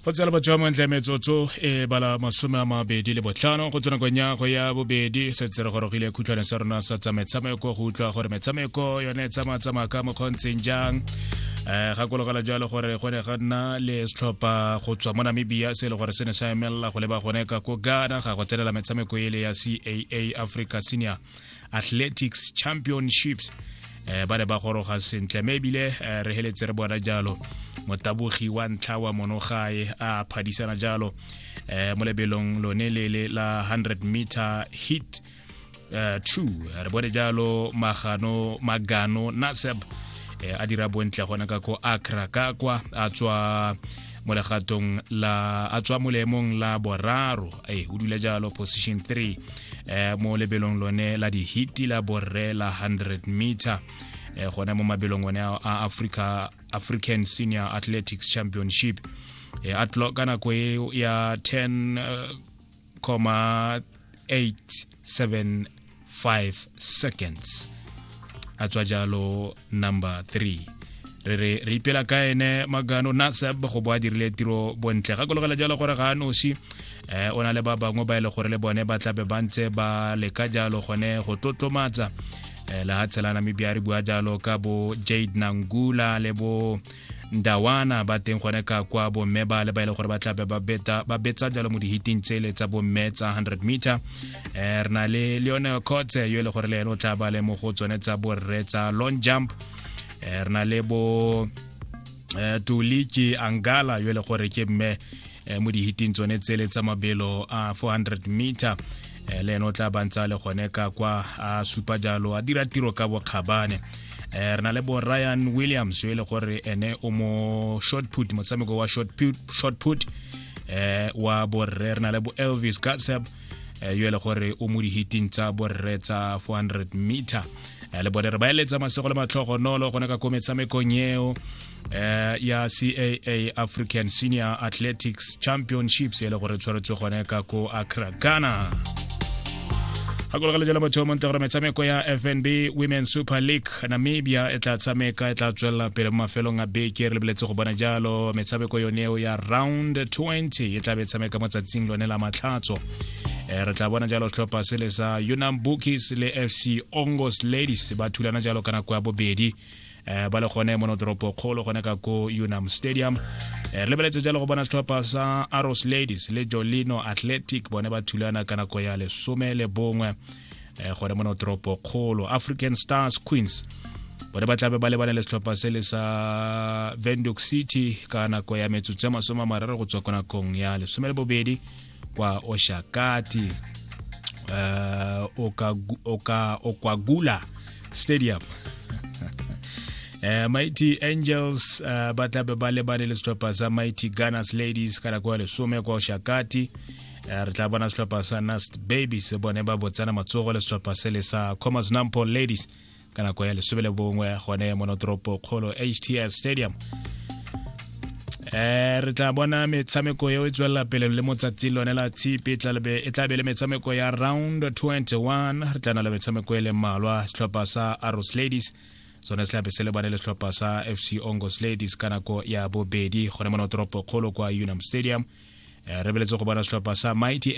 go tsela batho ba montle metsotso e bala masome a mabedi le botlhano go tsena konyago ya bobedi setse re gorogile khutshwane sa rona sa tsa metshameko go utlwa gore metshameko yone e tsamatsamaya ka mokgontseng jang um gakologela jalo gore go ne ga nna le setlhopha go tswa mo namibia se e le gore se ne sa emelela go leba gone ka ko ghana ga go tsenela metshameko ele ya caa africa senior athletics championships eh, ba ne ba goroga sentle mme ebile eh, re heletse re bona jalo motabogi wa ntlha wa monogae a phadisana jalo eh, mo lebelong lone lele la 100 meter hit eh, two re bone jalo magano magano naseb eh, a dira bontle gona ka ko akra ka kwa a tswa mo legatong la a tswa mo leemong la boraro e o dula jalo position 3 eh, mo lebelong lone la dihiti la borre la 100 meter eh, gone mo mabelong one a africa african senior athletics championship eh, atlo ka nako e ya 10 uh, eh, 3.875 seconds a tswa jalo number 3 re re re ipela ka ene magano nasab go bo a dirile tiro bontle ga kologela jalo gore ga a nosi eh o na le ba bangwe ba ile e gore le bone ba tlabe ba ntse ba leka jalo gone go tlotlomatsa eh, le ga tshela namibia re bua jalo ka bo jade nangula le bo ndawana ba teng gone ka kwa bomme ba le ba e le gore ba tlabe ba betsa jalo mo dihiting tsele tsa bomme tsa 100 meter um re na le leone cotse yo e le gore le ene o tla ba le mo go tsone tsa borre tsa long jump um re na le bo um toliki angala yo e le gore ke mme eh, mo dihiting tsone tsele tsa mabelo a 400 meter eh, le ene o tla bantsa le gone ka kwa a supa jalo a dira tiro ka bokgabane eh, re na le bo ryan williams yo e le gore ene o mo short put motshameko wa short put, short put eh, wa borre re na le bo elvis gatseb eh, yo e le gore o mo dihiting tsa borre tsa 400 meter eh, le bone re ba eletsa masego le matlhogonolo gone ka ko metshamekong eo eh ya CAA African Senior Athletics Championships e le gore tshwaretswe gone ka ko Accra Ghana gakologale jalo motho monte gore metshameko ya fnb women super league namibia e tla tshameka e tla tswelela pele mo mafelong a beke re lebeletse go bona jalo metshameko yoneo ya round 20 e tla be e tshameka mo tsatsing lone la matlhatso eh, re tla bona jalo setlhopha se le sa unam bookies le fc ongos ladies ba thulana jalo ka nako ya bobedi um ba le gone mono toropo kgolo gone ka ko unam stadium re lebeletse jalo go bona setlhopha sa aros ladies le jolino athletic bone ba thulana ka nako ya lesome le bongwe um gone mono toropo kgolo african stars queens bone ba tlabe ba lebane le setlhopha se le sa vendok city ka nako ya metsotso ya masome a mararo go tswa ko nakong ya lesome le bobedi kwa Oshakati uh, oka, oka, Okwagula Stadium Uh, Mighty Angels uh, ba tlabe ba lebane le setlhopha sa Mighty Gunners Ladies ka nako ya lesome kwa Oshakati uh, re tla bona setlhopha sa Nast Babies bone ba botsana matsogo le setlhopha se le sa Commerce Nampo Ladies ka nako ya lesome le bongwe gone monotoropo kgolo htl stadium eh re tla bona metshameko eo e tswelela pele le motsatsi lone la tshipi e tla be le metshameko ya round 21 re tla na le metshameko e le mmalwa setlhopha sa aros ladies sone se tlabe se lebane le setlhopha sa fc ongos ladies ka nako ya bobedi gone monotoropo kgolo kwa unam stadium eh, re beletse go bona setlhopha sa mighty